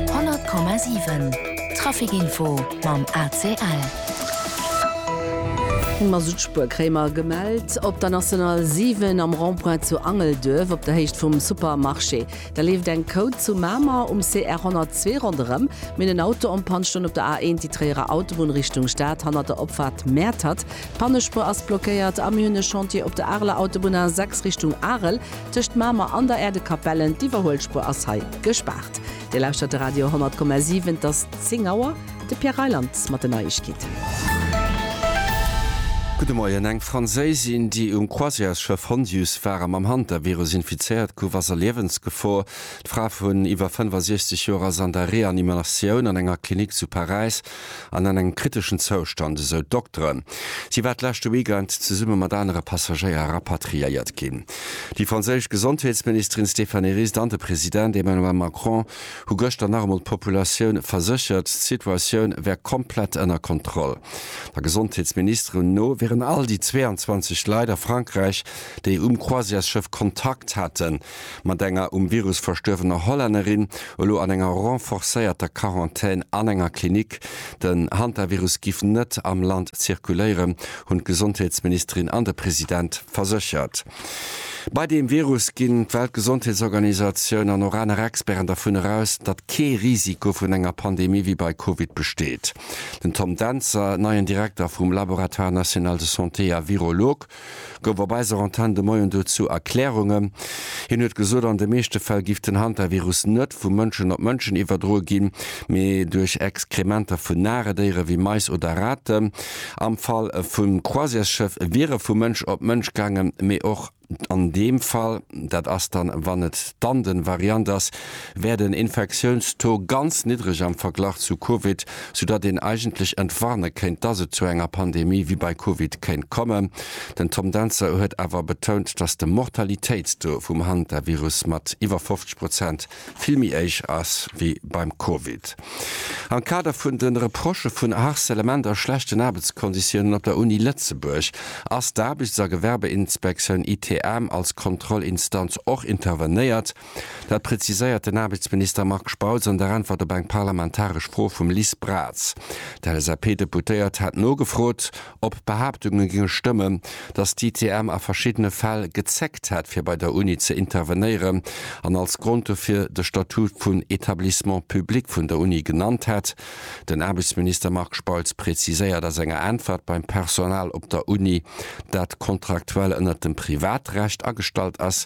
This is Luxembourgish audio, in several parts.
100,7 Traficinfo mam ACL. D'Mazoutspur Kréimer gemellt op der National 7 am Rond-point zu Angelduerf op der Héicht vum Supermarché. Da leeft eng Côte zu Mamer um CR 102 ronderëm. Mir hunn en Auto en Panne stoen op der A1, déi Tréierer Autobunn Richtung Stad, hannert der Opfaart Mäertert. D'Pannespur ass blockéiert. A mir hunn e Chantier op der Areler Autobunn A6 Richtung Arel. Tëscht Mamer an der Äerdekapellen, d'Iwwerhuelspuer ass hei gespaart. Dir lauschtert de Radio 10,7, et ass 10 Auer. De Pierre Reyland mat den Neiegkeeten. Gudde Moien, Eng Franséisin, déi um Croisièresschëff Hondius war a mam Hantavirus infizéiert gouf, ass a Liewensgefor. D'Fra vun iwwer 65 Joer ass an der Reanimatioun an enger Klinik zu Paräis. an an engem kriteschen Zoustand, esou d'Dokteren. Si war d'leschte Weekend zesumme mat anere Passagéier rapatriéiert ginn. Déi franséisch Gesondheetsministerin Stéphanie Rist an de President Emmanuel Macron hu gëschter nach emol d'Populatioun verséchert, d'Situatioun wär komplett ënner Kontroll. Der Gesondheetsministerin no wieren all déi 22 Leit a Frankräich, déi um Croisièresschëff Kontakt haten, mat enger um Virus verstuerwener Hollännerin elo an enger renforcéierter Quarantän an enger Klinik. Den Hantavirus giff net am Land zirkuléieren, hunn d'Gesondheetsministerin an de President verséchert. Bei deem Virus ginn d'Weltgesondheetsorganisatioun an och aner Experten dervun eraus, datt kee Risiko vun enger Pandemie wéi bei Covid besteet. Den Tom Dentzer, neien Direkter vum Laboratoire national de santé a Virolog, gouf op eiser Antenn de Moien dozou Erklärungen. Hien huet gesot, an de meeschte Fäll giff den Hantavirus net vu Mënschen op Mënschen iwwerdroe ginn, mee duerch Exkrementer vun Naredéiere wéi Mais oder Raten. Am Fall vum Croisièresschëff wier e vu Mënsch op Mënsch gaangen, mee och an deem Fall, dat ass dann, wann et d'Anden-Variant ass, wär den Infektiounstaux ganz niddreg am Verglach zu Covid. soudatt een eigentlech entwarne kéint, dass et zu enger Pandemie wéi bei Covid kéint kommen. Den Tom Dentzer huet awer betount, dass de Mortalitéitstaux vum Hantavirus mat iwwer 50 Prozent vill méi héich ass wéi beim Covid. Am Kader vun de Reprochë vun Harcelement a schlechten Aarbechtskonditiounen op der Uni Lëtzebuerg ass d'Aarbechts a Gewerbeinspektioun, ITM, als Kontrollinstanz och intervenéiert. Dat preziséiert den Aarbechtsminister Marc Spautz an der Äntwert op eng parlamentaresch Fro vum Liz Braz. D'LSAP-Deputéiert hat nogefrot, ob d'Behaaptunge géinge stëmmen, datt d'ITM a verschiddene Fäll gezéckt hätt, fir bei der Uni ze intervenéieren an als Grond dofir de Statut vun Etablissement public vun der Uni genannt hätt. Den Aarbechtsminister Marc Spautz preziséiert a senger Äntwert, beim Personal op der Uni, dat kontraktuell ënnert dem Privatrecht agestallt ass,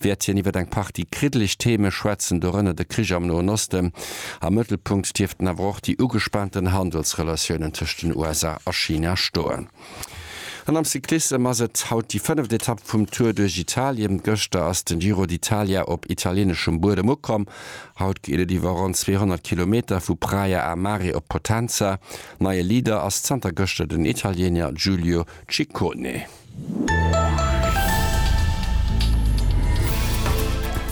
wäert hien iwwer eng Partie kriddeleg Theme schwätzen, dorënner de Krich am Noen Osten. Am Mëttelpunkt dierften awer och déi ugespaanten Handelsrelatiounen tëscht den USA a China stoen. An am Cyclissem ass et haut déi fënneft Etapp vum Tour duerch Italien. Gëschter ass den Giro d'Italia op italieneschem Buedem ukomm. Haut geet et iwwer ronn 200 Kilometer vu Praia a Mare op Potenza. Neie Leader ass zanter gëschter den Italiener Giulio Ciccone.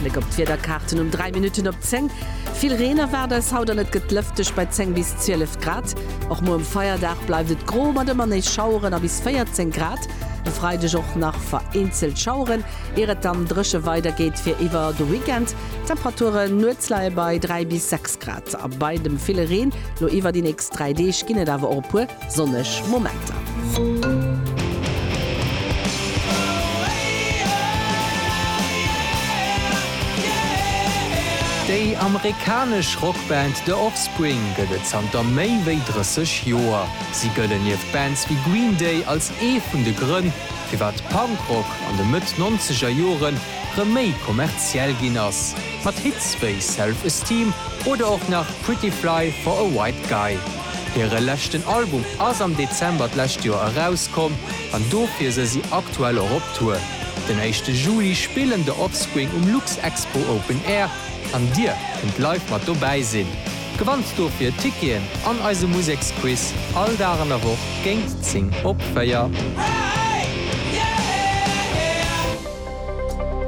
Bléck op d'Wiederkaarten um 3 Minutten op 10, Vill Reen erwaart eis haut an et gëtt lëfteg bei 10 bis 12 Grad. Och muer um Feierdag bleift et gro mat ëmmer nees Schaueren a bis 14 Grad. De Freideg och nach vereenzelt Schaueren, ier et dann dréche weidergeet fir iwwer de Weekend. D'Temperaturen nuets leie bei 3 bis 6 Grad a bei dem ville Reen. Lo iwwer déi nächst 3 Deeg ginn et awer och e puer. Sonneg Momenter. Déi amerikanesch Rockband The Offspring gëtt et zanter méi wéi 30 Joer. Si gëllen nieft Bands wéi Green Day als ee vun de Grënn, firwat Punkrock an de Mëtt-Nonzeger Jore rëm méi kommerziell ginn ass, mat Hits wéi Self Esteem oder och nach Pretty Fly for a White Guy. Hire leschten Album ass am Dezember d'lescht Joer erauskomm an dofir se si aktuell och op Tour. Den éischte Juli spillen The Offspring um Luxexpo Open Air an Dir kënnt live mat dobäi sinn. Gewannt dofir Ticketen an eise Museksquiz all Dag an der Woch géint 10 op 4.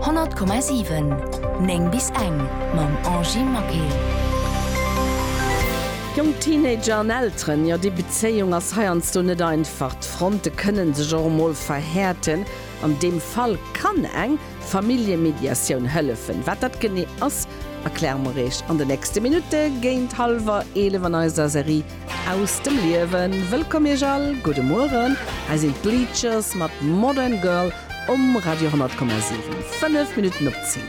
Honnert Komma siwen, néng bis eng, mam Angie Maquet. Jonk Teenager an Elteren, jo déi Bezéiung ass heiansdo net einfach. D'Fronte kënnen sech och emol verhäerten. An deem Fall kann eng Familljemediatioun hëllefen. Wat dat genee ass, erkläre mer Iech an de nächste Minutte géint hallwer 11 an eiser Serie Aus dem Liewen. Wëllkomm Iech all, gudde Mueren. Hei sinn d'Bleachers mat Modern Girl um Radio 100,7. Fënnef Minutten op zéng.